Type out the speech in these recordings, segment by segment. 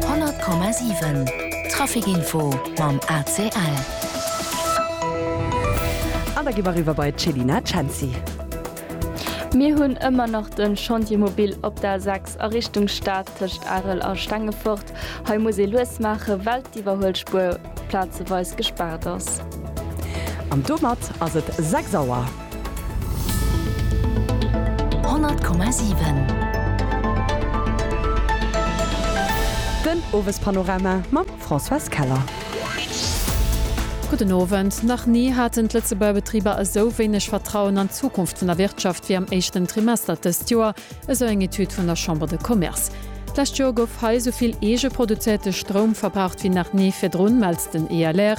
100,7 Trafic-Info mam ACL. An da gi mer eriwwer bei d'Chelina Cenci. Mir hunn ëmmer nach de Chantier mobile op der A 6 a Richtung Stad tëscht Arel a Stengefort. Hei muss ee lues maachen, well d'Iwwerhuelspuer plazeweis gespaart ass. An domat ass et 6 Auer. 100,7. Den Owespanorama mam Françoise Keller. Gudden Owend. Nach ni haten d'Lëtzebuerger Betriber esou wéineg Vertrauen an d'Zukunft vun der Wirtschaft wéi am éischten Trimester dëst Joer, esou eng Etüd vun der Chambre de Commerce. D'lescht Joer gouf hei esou vill eege produzéierte Stroum verbraucht wéi nach ni virdrun, mellt den ILR.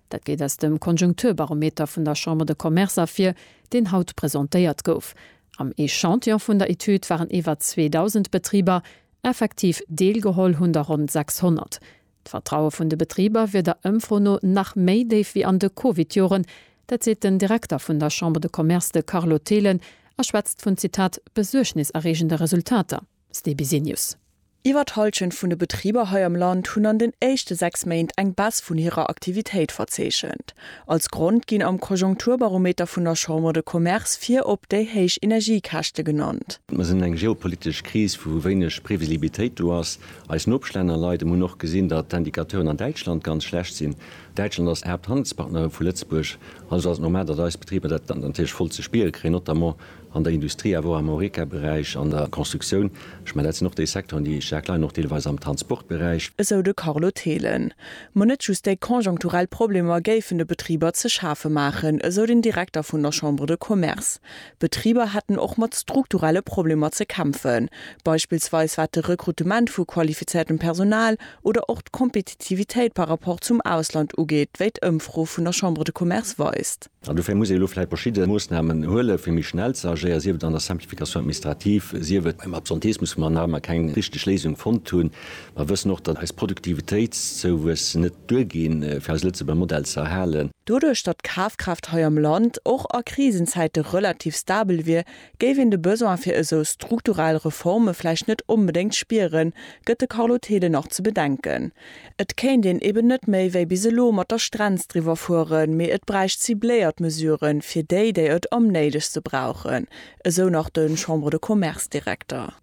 Dat geet aus dem Konjunkturbarometer vun der Chambre de Commerce ervir, deen haut presentéiert gouf. Am Echantillon vun der Etüd waren iwwer 2.000 Betriber. Effektiv deelgeholl hunn der ronn 600. D'Vertraue vun de Betriber wier der Ëmfro no nach méi déif wéi an de Covid-Joren. Dat seet den Direkter vun der Chambre de Commerce, de Carlo Thelen a schwätzt vun, Zitat, besuergniserreegende Resultater. Ste Bisenius. Iwwer d'Hallschent vun de Betriber hei am Land hunn an den éischte sechs Méint eng Baisse vun hirer Aktivitéit verzeechent. Als Grond ginn am Konjunkturbarometer vun der Chambre de Commerce virop déi héich Energiekäschte genannt. Mer sinn eng geopolitesch Kris, wou wéineg Previsibilitéit do ass. Eis Nopeschlänner leiden. Mer hunn och gesinn, datt d'Indicateuren an Däitschland ganz schlecht sinn. Däitschland ass Haapthandelspartner vu Lëtzebuerg. Also ass et normal, datt eis Betriber dat natierlech voll ze spiere kréien, notamment an der Industrie awer och am Horeca-Beräich, an der Constructioun, ech mengen dat sinn och déi Secteuren, déi staark leiden, och deelweis am Transportberäich. Esou de Carlo Thelen. Ma net just déi konjonkturell Problemer géifen de Betriber ze schafe maachen, esou den Direkter vun der Chambre de Commerce. D'Betriber hätten och mat strukturelle Problemer ze kämpfen, beispillsweis wat de Rekrutement vu qualifizéiertem Personal oder och d'Kompetitivitéit par rapport zum Ausland ugeet, wéi d'Ëmfro vun der Chambre de Commerce weist. An dofir muss ee elo vläicht verschidde Moossnamen huelen, fir méi schnell ze agéieren, sief et an der Simplification administrative, sief et beim Absenteismus, wou mer nach ëmmer keng richteg Léisung fonnt hunn. Mer wëssen och, datt eis Produktivitéitszouwuess net duerginn, fir eise Lëtzebuerger Modell ze erhalen. Doduerch, datt d'Kafkraaft hei am Land och a Krisenzäite relativ stabel wier, géif een de Besoin fir esou strukturell Reforme vläicht net onbedéngt spieren, gëtt de Carlo Thelen nach ze bedenken. Et kéint een eben net méi wéi bis elo mat der Strenz driwwer fueren, mee et bräicht cibléiert Mesuren, fir déi, déi et am néidegste brauchen, esou nach de Chambre-de-Commerce-Direkter.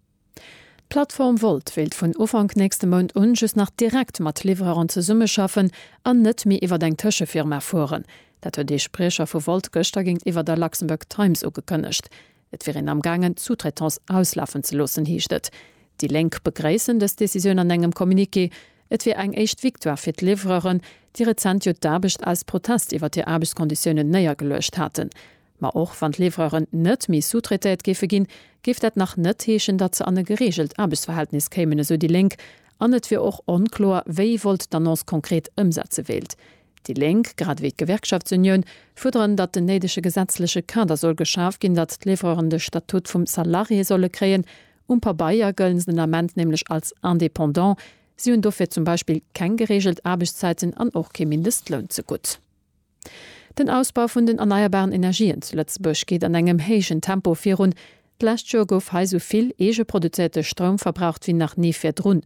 D'Plattform Wolt wéilt vun Ufank nächste Mount un just nach direkt mat Livreuren zesummeschaffen an net méi iwwer eng Tëschefirma fueren. Dat huet ee Spriecher vu Wolt gëschter géintiwwer der Luxembourg Times ugekënnegt. Et wier een amgaangen, d'Sous-traitance auslafen ze loossen, heescht et. Déi Lénk begréissen dës Decisioun an engem Communiqué. Et wier eng éischt Victoire fir d'Liwwereren, déi rezent jo d'Aarbecht aus Protest iwwer hir Aarbechtskonditiounen néiergeluecht haten. Ma och wann d'Liwwereren net méi sous-traitéiert géife ginn, géif dat nach net heeschen, datt se an e gereegelt Aarbechtsverhältnis kéimen, esou déi Lénk. An et wier och onkloer, wéi Volt d'Annonce konkret ëmsetze wéilt. Déi Lénk, grad ewéi d'Gewerkschaftsunioun, fuerderen, datt den néidege gesetzleche Kader soll geschaf ginn, datt d'Livreuren de Statut vum Salarié solle kréien. Um Pabeier gëllen se den Ament nämlech als Indépendant. Si hunn dofir zum Beispill keng gereegelt Aarbechtszäiten an och kee Mindestloun zegutt. Den Ausbau vun den erneierbaren Energien zu Lëtzebuerg geet an engem héijen Tempo virun. D'lescht Joer gouf hei esou vill eegeproduzéierte Stroum verbraucht ewéi nach ni virdrun.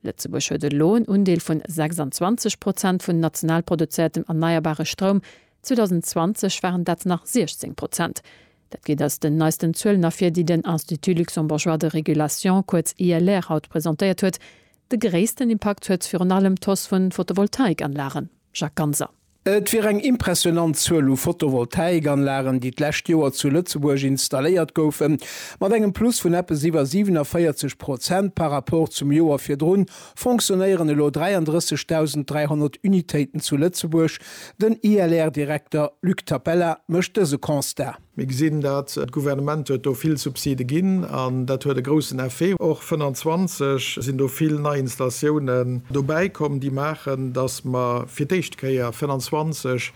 Lëtzebuerg huet elo en Undeel vun 26 Prozent vun national produzéiertem erneierbare Stroum, 2020 waren dat nach 16 Prozent. Dat geet aus den neisten Zuelen ervir, déi den Institut luxembourgeois de régulation, kuerz ILR, haut presentéiert huet. De gréissten Impakt huet virun allem d'Hausse vu Photovoltaikanlagen. Jacques Ganser. Et wier eng impressionant Zuel u Photovoltaikanlagen, déi d'lescht Joer zu Lëtzebuerg installéiert goufen, mat engem Plus vun eppes iwwer 47 Prozent par rapport zum Joer virdrun fonctionnéieren elo 33.300 Unitéiten zu Lëtzebuerg. Den ILR-Direkter Luc Tapella mécht dëse Constat. Mir gesinn dat, d'Gouvernement huet do vill Subside ginn an dat huet e groussen Effet. Och 25 sinn do vill nei Installatiounen dobäi komm, déi maachen, datt mer fir d'éischt Kéier 25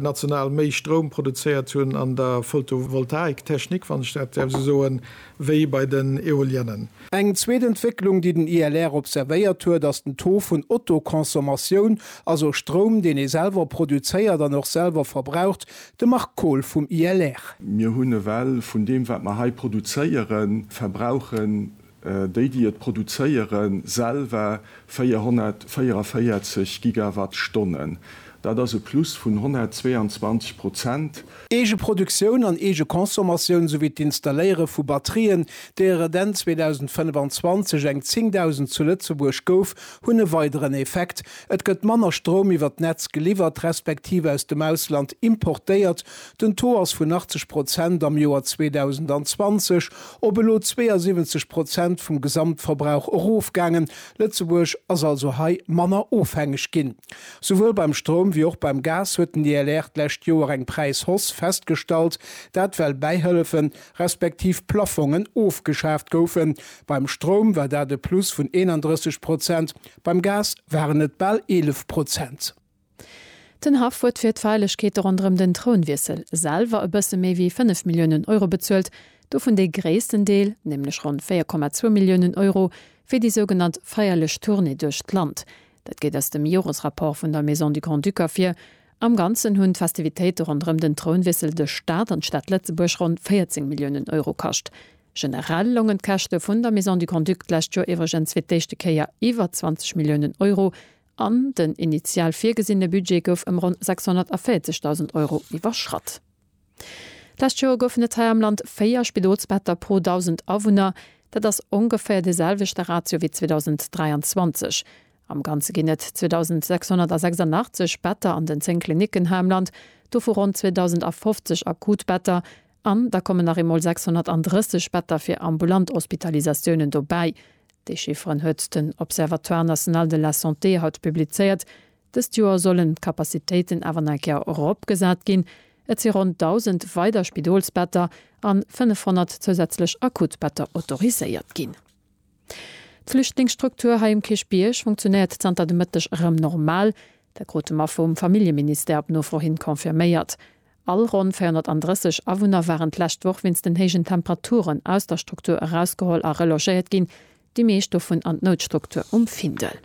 national méi Stroum produzéiert hunn an der Photovoltaiktechnik, wann ech dat däerf esou soen, wéi bei den Eoliennen. Eng zweet Entwécklung, déi den ILR observéiert huet, ass den Taux vun Autoconsommatioun, also Stroum, deen ee selwer produzéiert an och selwer verbraucht, De Marc Kohl vum ILR. Mir hunn ewell vun deem, wat mer hei produzéieren, verbrauchen déi, déi et produzéieren, selwer 444 Gigawattstonnen. Dat ass e Plus vun 122 Prozent. Eegeproduktioun an Eegeconsommatioun souwéi d'Installéiere vu Batterien, deeër et Enn 2025 eng 10.000 zu Lëtzebuerg gouf, hunn e weideren Effekt, Et gëtt manner Stroum iwwer d'Netz geliwwert, respektiv aus dem Ausland importéiert, den Taux ass vun 80 Prozent am Joer 2020 op elo 72 Prozent vum Gesamtverbrauch erofgaangen. Lëtzebuerg ass also hei manner ofhängeg ginn. Souwuel beim Stroum wéi och beim Gas huet den DLR d'lescht Joer eng Präishausse festgestallt, dat well Bäihëllefen, respektiv Plaffongen ofgeschaaft goufen. Beim Stroum war dat e Plus vun 31 Prozent, Beim Gas waren et bal 11 Prozent. Den Haff huet fir d'Feierlechkeete ronderëm den Trounwiessel selwer e bësse méi wéi 5 Milliounen Euro bezuelt, dovun dee gréissten Deel, nämlech ronn 4,2 Milliounen Euro, fir déi sougenannt feierlech Tournée duerch d'Land. Dat geet aus dem Joresrapport vun der Maison du Grand-Duc ervir, Am Ganzen hunn d'Festivitéite ronderëm den Trounwiessel de Staat an d'Stad Lëtzebuerg ronn 14 Milliounen Euro kascht. Generell longen d'Käschte vun der Maison du Grand-Duc d'lescht Joer iwwregens fir d'éischte Kéier iwwer 20 Milliounen Euro an den initial virgesinne Budget gouf ëm ronn 640.000 Euro iwwerschratt. D'lescht Joer goufen et hei am Land 4 Spidolsbetter pro 1.000 Awunner. Dat ass ongeféier dee selwechte Ratio wéi 2023. Am Ganze ginn et 2.686 Better an den 10 Klinicken hei am Land, dovu ronn 2.050 akut Better. An da kommen nach eemol 630 Better fir ambulant Hospitalisatiounen dobäi. Déi Chifferen huet den Observatoire national de la santé haut publizéiert. Dëst Joer sollen d'Capacitéiten awer nach eng Kéier eropgesat ginn. Et si ronn 1.000 weider Spidolsbetter an 500 zousätzlech Akutbetter autoriséiert ginn. D'Flüchtlingsstruktur hei um Kierchbierg funktionéiert zanter de Mëtteg erëm normal. Dat krute mer vum Familljeministère op Nofro hin confirméiert. All ronn 430 Awunner waren d'lescht Woch wéinst den héijen Temperaturen aus der Struktur erausgeholl a relogéiert ginn, déi meescht dovun an d'Noutstruktur um Findel.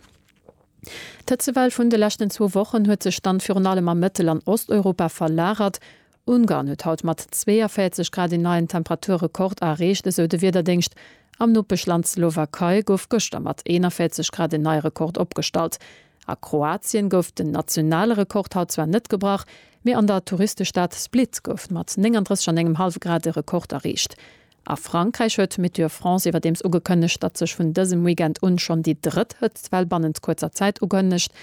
D'Hëtzewell vun de leschten zwou Wochen huet sech dann virun allem a Mëttel an Osteuropa verlagert. Ungarn huet haut mat 42 Grad een neien Temperaturrekord areecht, esou de Wiederdéngscht. Am Nopeschland Slowakei gouf gëschter mat 41 Grad en neie Rekord opgestallt. A Kroatien gouf den nationale Rekord haut zwar net gebrach, mee an der Touristestad Split gouf mat 39 an engem hallwe Grad e Rekord areecht. A Frankräich huet Météo France iwwerdeems ugekënnegt, datt sech vun dësem Weekend un schonn déi drëtt Hëtztwell bannent kuerzer Zäit ukënnegt.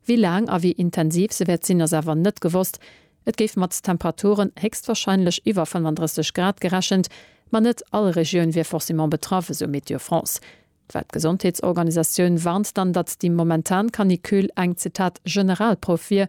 Wéi laang a wéi intensiv se wäert sinn, ass awer net gewosst. Et géif mat Temperaturen héchstwarscheinlech iwwer 35 Grad gerechent, ma net all Regioun wier forcément betraff, esou Météo France. D'Weltgesondheetsorganisatioun warnt dann, datt déi momentan Canicule eng, Zitat, Generalprouf wier,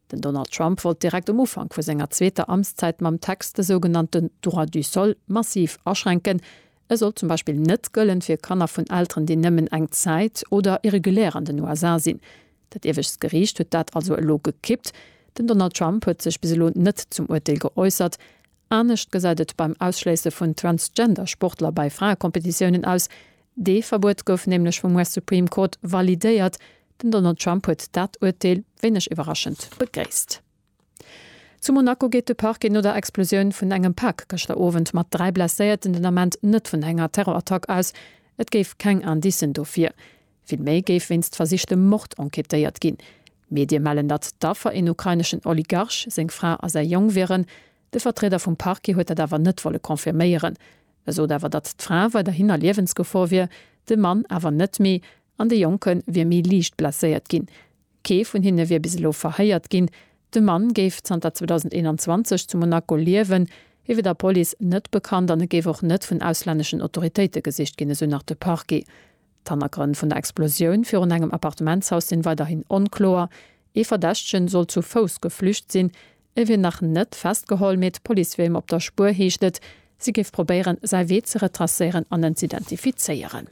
Den Donald Trump wollt direkt um Ufank vu senger zweeter Amtszäit mam Text de sougenannten Droit du sol massiv aschränken. E sollt zum Beispill net gëllen fir Kanner vun Elteren, déi nëmmen eng Zäit oder irregulär an den USA sinn. Dat iewescht Geriicht huet dat also elo gekippt. Den Donald Trump huet sech bis elo net zum Urteel geäussert. Anescht gesäit et beim Ausschléisse vun Transgender Sportler bei Fraekompetitiounen aus. Dee Verbuet gouf nämlech vum US Supreme Court validéiert. Den Donald Trump huet dat Urteel, wéineg iwwerraschend, begréisst. Zu Monaco geet de Parquet no der Explosioun vun engem Pak gëschter Owend mat 3 Blesséierten den Ament net vun enger Terrorattack aus. Et géif keng Indicen dofir. Vill méi géif wéinst versichtem Mord enquêtéiert ginn. Medie mellen, datt d'Affer een ukraineschen Oligarch, seng Fra a säi Jong wieren. De Vertrieder vum Parquet huet dat awer net wolle confirméieren. E sot awer, datt d'Fra weiderhin a Liewensgefor wier, de Mann awer net méi an de Jonke wier méi liicht blesséiert ginn. Kee vun hinne wier bis elo verhéiert ginn. De Mann géif zanter 2021 zu Monaco liewen. Hie wier der Police net bekannt an et géif och net vun auslänneschen Autoritéite gesicht ginn, esou nach de Parquet. D'Hannergrënn vun der Explosioun virun engem Appartementshaus sinn weiderhin onkloer. Ee Verdächtegen soll zu Fouss geflücht sinn. E wier nach net festgeholl, mee d'Police wier him op der Spuer, heescht et. Si géif probéieren, säi Wee ze retracéieren an en z'identifizéieren.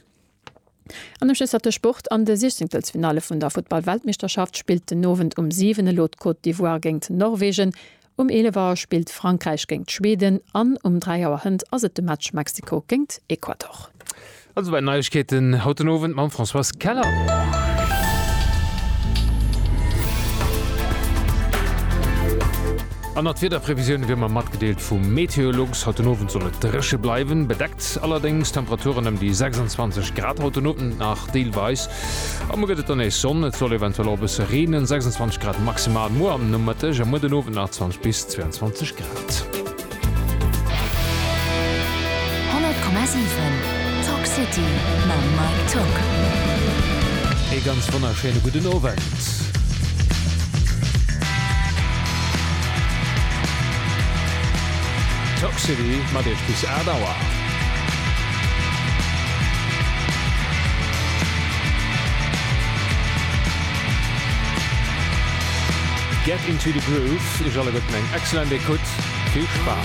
An ëm Schësser de Sport, An de Siechzéngtelsfinalle vun der Futtball-Weltmeeschterschaft spillt den Owend um 7 elo d'Côte d'Ivoire géingt Norwegen. Um 11 Auer spillt Frankräich géingt Schweden an um 3 Auer Hënt ass et de Match Mexiko géingt Ecuador. All esou weit Neiegkeeten haut den Owend mam Françoise Keller. An der d'Wiederprevisioune wier mer matgedeelt vum Meteolux. Haut den Owend soll et dréche bleiwen, bedeckt allerdéngs Temperaturen ëm déi 26 Grad haut den Owend nach deelweis A muer gëtt et dann nees Sonn, et soll eventuell och e bësse reenen, 26 Grad maximal muer am Nomëtteg a muer den Owend nach 20 bis 22 Grad. 100,7 Talk City mam Mike Tock. Ee ganz wonnerschéine gudden Owend. Talk City mat Iech bis 8 Auer. Get into the Groove, iech alleguerten eng excellent Ecoute, vill Spaass!